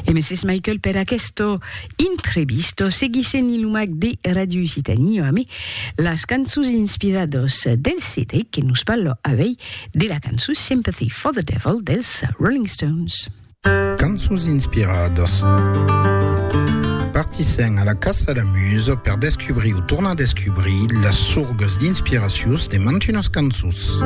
E Mrs. Michael per aquesto intrevisto seguissen i lumac de Radio Occitanie amé las cançons inspirados del CD que nos parlo avei de la cançon Sympathy for the Devil dels Rolling Stones. Cançons inspiradas. Partissèm a la caça la musa per descubrir o tornar descubrir las sorgas d'inspiracions de mantunas cançons.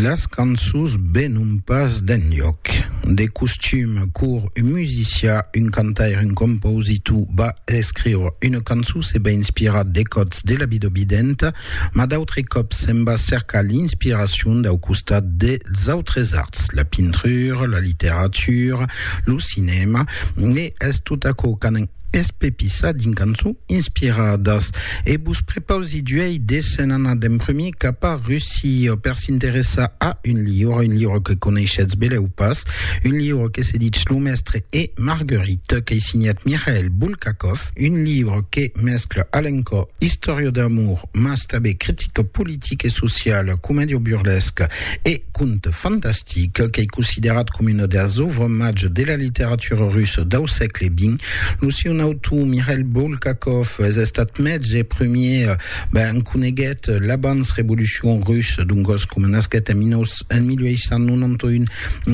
Las cançons venon pas d'enlhòc. De costum, cor un musicià, un cantaire, un compositor va escriure una cançon se va inspirar de còts de la vida videnta Mas d'autres còps se'n va cercar l'inspiracion dau costat dels autres arts, la pintura, la literatura, lo cinèma, e es tot aquò qu'anan espepissar dins cançons inspiradas. E vos prepausi d'uèi de se'n anar d'en prumir cap a Russia per s'interessar a un liure, un liure que coneishetz belèu pas, un liure que se ditz Lo Mestre e Marguerite, qu'ei signat Mikhail Bulgakov. Un libre que mescla a l'encò istòria d'amor mas tanben critica politica e sociala, comèdia burlesca e conte fantastic. Qu'ei considerat coma una das òuvres mages de la literatura russa dau sègle xx. Lo siun autor, Mikhail Bulgakov, es estat mètz e premier, ben, en coneguèt l'abans revolucion russa, doncas coma nasquèt en 1891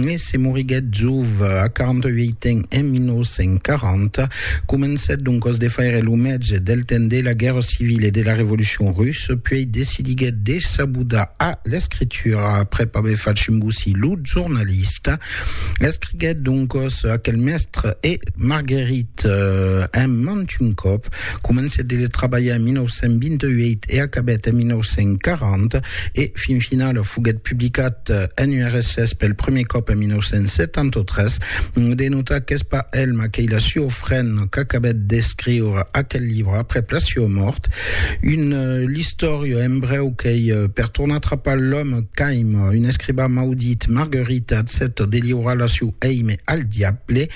e se moriguèt jove, a 48 ans, en 1940, Comencèt doncas de faire lo mètge del temps de la guèrra civila e de la revolucion russa, puèi decidiguèt de s'abudar a l'escritura aprèp aver fach embosir lo jornalista. Escriguèt doncas aquel mèstre e Marguerite en mant un còp, comencèt de le trabalhar en 1928 e acabèt en 1940, e fin finala foguèt publicat en URSS pel primièr còp en 1973. De notar qu'es pas el maquelh Siofren qu'acabèt d'escriure aquel libre aprèp la siua mòrt, un l'istòria en brèu qu'ei per tornar trapar l'òme caim, un escribà maudit, Marguerite accèpta de liurar la siu èime al diable,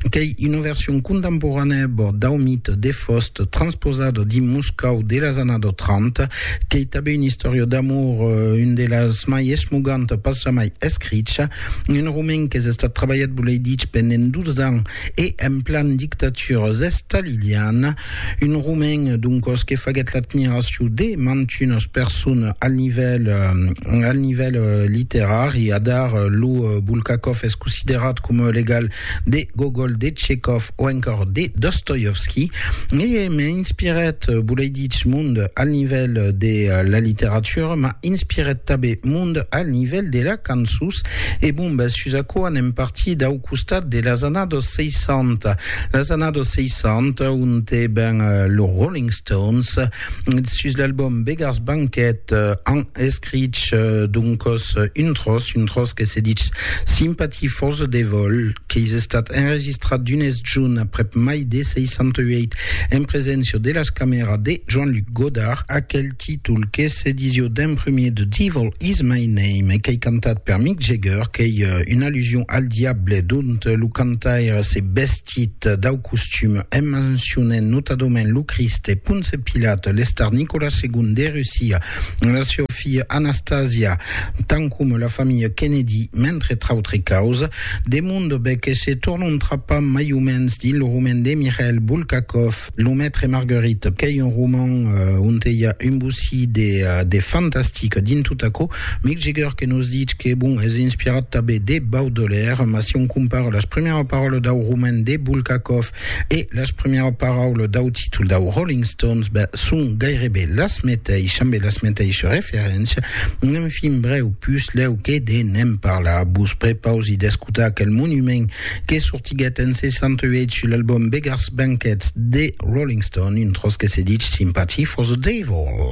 qu'ei una version contemporanèa bòrd dau mite de Faust transposada dins Moscòu de las annadas 30, qu'ei tanben una istòria d'amor, una de las mai esmogantas pas jamai escricha. Un romen qu'es estat trabalhat, volei dich, pendent dus ans e en plan dictatura staliliana. Un romen, doncos, que faguèt l'admiracion de mantunas personas al nivèl al nivèl literari. Adar, lo Bulgakov es considerat coma legal de Gogol, de Tchekhov o encòr de Dostoievski e m'a inspirat, volei dich, mond al nivèl de la literatura, m'a inspirat tabé mond al nivèl de la cançons e bon bèth sus aquò anem partir dau costat de las annados 60, las annados 60 onte ben los Rolling Stones, sus l'album Beggars Banquet an escrich donc un tros, un tros que se ditz Sympathy for the Devil, qu'es estat enregistrat d'unes junt aprèp mai de 68 en preséncia de las camèras de Joan-Luc Godard, aquel títol que se disió d'en premier The Devil is my name e qu'ei cantat per Mick Jagger, qu'ei una allusion al diable dont lo cantaire se vestís. vestit dau costum, en mencionent notadament lo Crist e Ponce Pilat, l'Estar Nicolas ii de Russia, la seua filha Anastasia, tant coma la familha Kennedy, mentre trautre causa, de monde, be que se tornon trapar mai o mens dins lo roman de Mikhail Bulgakov, Lo Maître et Marguerite, qu'ei un roman onte i a un bocí de fantastic dins tot aquò. Mick Jagger que nos ditz que, bon, es inspirat tanben de Baudelaire, mas si on compara las primièras paraules dau roman de Bulgakov e las primièras paraules dau títol dau Rolling Stones, ben, son gaireben las meteishas, ambe las meteishas referéncias. Enfin, brèu, puslèu que de ne'n parlar, vos prepausi d'escotar aquel monument que sortiguèt en 68 sul album Beggars Banquet de Rolling Stone, un tròç que se dich Sympathy for the Devil.